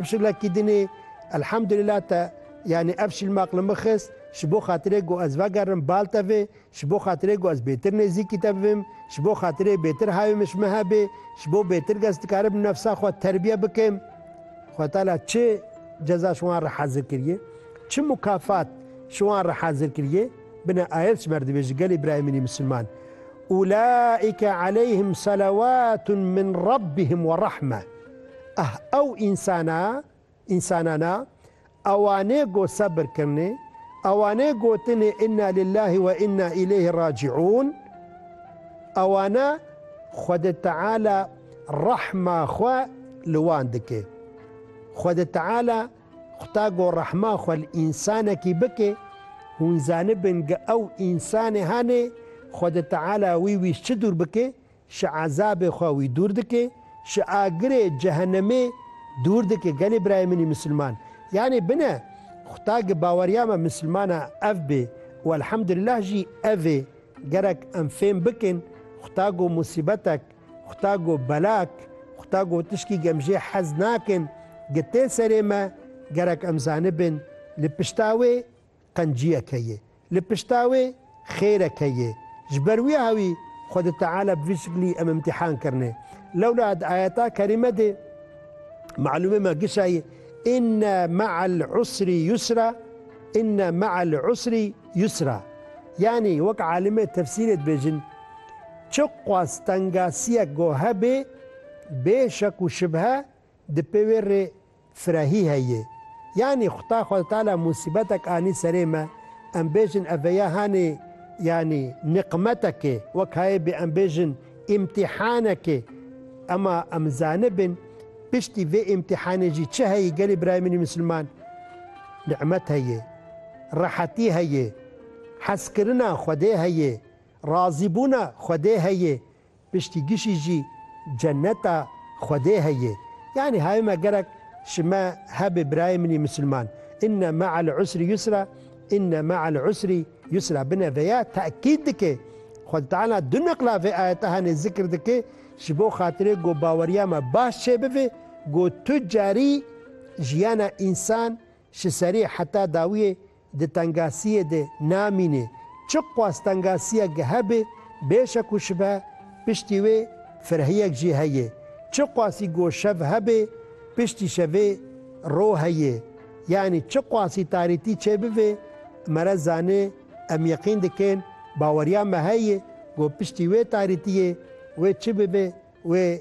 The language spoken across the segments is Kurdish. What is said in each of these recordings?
Şilekî din e. Elhamdulillah te yanî ev şilme aqil min xist ji bo xatirê ku ez vegerim bal tevê, ji bo xatirê ku ez bêtir nêzîkî te bibim, ji bo xatirê bêtir hayê min ji min hebê, ji bo bêtir kes dikaribim nefsa xwe terbiye bikim. Xweda Teala çi ceza ji wan re hezir kiriye, çi mukafat ji wan re hezir kiriye, bine ayet ji me re dibêje gelê birayemînî misilman, Ulaîke aleyhim selewatun min Rabbihim werehme. Eh ew însana însanana ewanê go sebir kirnê, ewanê gotinê inna lillahî we inna îleyhî racîûn, ewana Xwedê Teala rehma xwe li wan dikê. Xwedê Teala xuta go rehma xwe li însanekî bikê, hûn zanibin ge ew însanê hanê Xwedê Teala wî wî çi dûr bikê, Ji ezabê xwe wî dûr dike, ji agirê cehenemê dûr dike gelê birayê min ê misilman. Yanê bine xuda gi baweriya me misilmana ev bê û elhemdulîlah jî ev ê. Gerek em fêm bikin xuda go musîbetek, xuda go belak, xuda go tişkî gem jê hez nakin gi tê serê me gerek em zanibin li pişta wê Qenciyeke ye. Li pişta wê xêreke ye. Ji ber wî hawî Xwedê Teala bi vî şiklî em îmtîhan kirine. Lewla di ayeta kerîme de malûmê me gişayê Inne me'el usrî yusra Inne me'el usrî yusra Yanî wek alimê tefsîrê dibêjin Çiqas tengasiyek go hebê bê şek û şibhe Di pê wê rê firehî heye. Yanî Xuda xwe tala musîbetek anî serê me, em bêjin ev veya hanê yanî niqmetekê, wek hayê bê em bêjin îmtîhanekê. Ema em zanibin piştî vê îmtîhanê jî çi heye gelê birayê min ê misilman? Niqmet heye, rehetî heye, hezkirina Xwedê heye, razîbûna Xwedê heye. Piştî gişî jî ceneta Xwedê heye. Yanî hayê me gerek ji me hebê birayê min î misilman. Inne me'el usri yusra, inne me'el usri yusra bine veya tekîd dike. Xwedî Teala du neqla vê ayete hene zikr dike ji bo xatirê ku baweriya me baş çêbive ku tu carî jiyana însan Ji serî heta dawiyê di tengasiyê de namînê. Çi qas tengasiyek hebe bê şek û şibe piştî wê firehiyek jî heye. Çi qasî go şev hebe piştî şevê ro heye. Yanî çi qasî tarîtî çê bibe me re zanê em yeqîn dikin baweriya me heye go piştî wê tarîtiyê wê çi bibe wê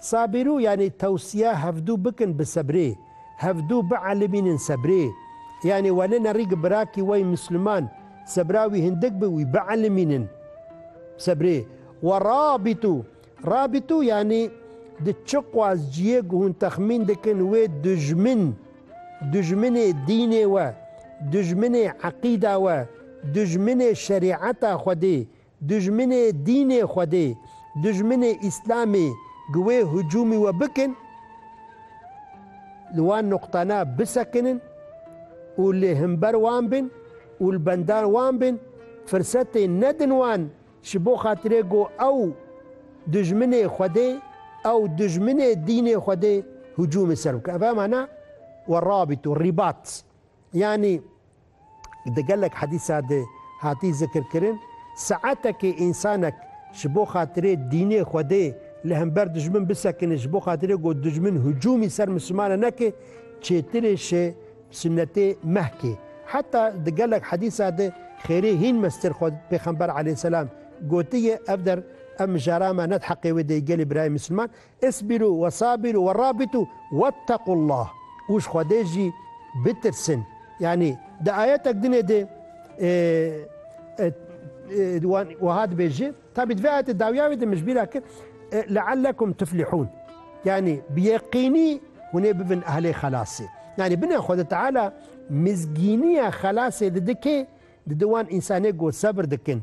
Sabîru yanî tewsiya hevdu bikin bi sebrê, hevdu bielimînin sebrê. Yanî wene nerî gi birakî we yî Misliman sebra wî hindik bi wî bielimînin sebrê. Wa rabîtu, rabîtu yanî di çiqas ciyê ku hûn texmîn dikin wê dijmin, dijminê dînê we, dijminê eqîda we, dijminê şerîeta Xwedê, Dijminê dînê Xwedê, dijminê Îslamê gi wê hicûmî we bikin, li wan nuqtana bisekinin û li himber wan bin û li benda wan bin, firsetê nedin wan ji bo xatirê ku ew dijminê Xwedê, ew dijminê dînê Xwedê hicûmê ser bikin. Ev hema na we rabît û rîbat. Yanî Di gelek hedîsa de hatî zikirkirin, saetekê însanek ji bo xatirê dînê Xwedê li hember dijmin bisekine, ji bo xatirê ku dijmin hicûmî ser Mislimanan neke, çêtirê şê sunnetê mehkê. Heta di gelek hedîsa de xêrê hîn mestêr xwe pêxember aleyhisselam gotiye, ev der ev mijara me ne di heqê wê de yê gelê birayê Misliman, Isbirû ve sabirû ve rabitû wettaqullâh û ji Xwedê jî bitirsin. Yanî di ayetek din ê de wan wiha dibêje, tabî di vê ayetê dawiya wê de min ji bîr a kir leellekum tuflihûn yanî bi yeqînî hûn ê bibin ehlê xelasê. Yanî bine Xwede Teala mizgîniya xelasê didi kê? Didi wan însanê ku sebir dikin.